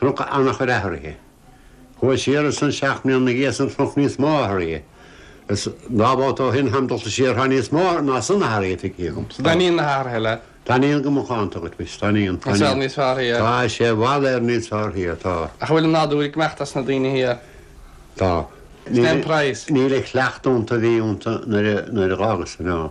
Chonac ana-chuid athraithe. Chuaigh mé siar ansan seacht mbliana ina dhiaidh san chonac níos mó athraithe. Is dhá bhabhta ó shoin tháim dulta siar thá níos mó ná san athraithe feicthe agam. An dtaithníonn na hathraithe leat? Taithníonn go macánta dhuit muis. Taithníonn. Tá sé níos fearr thiar. Tá sé i bhfad ar níos fearr thiar. Tá. Ach an bhfuil an nádúr ag imeacht as na daoine thiar? Tá. Is é an praghas? Níl an chuileachta ionta a bhí ionta nuair a dh'fhágas an.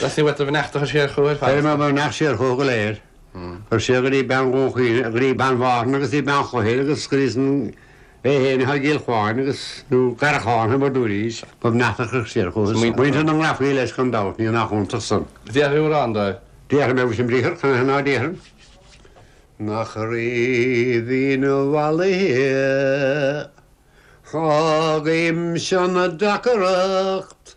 Tá sé uait do bheannacht a chur siar chúthu ar fad. Beir mo bheannacht siar chúthu go léir, ar sé go dtí bean Dhún Chaoin go dtí bean Mhárthain agus go dtí bean Chloichir agus go dtí san é fhéin atá i gCill Chuáin agus nó Garrachán thimir dúinn arís mo bheannacht a chur siar chúthu san. Muintir na nGrafaí leis gan dabht, níl nach iontach san. Déarfaidh tú amhrán dóibh. Déarfaidh mé im briathar, cad é ná déarfainn? Nach raibh ina mhalaithe fágaim seo na deacracht.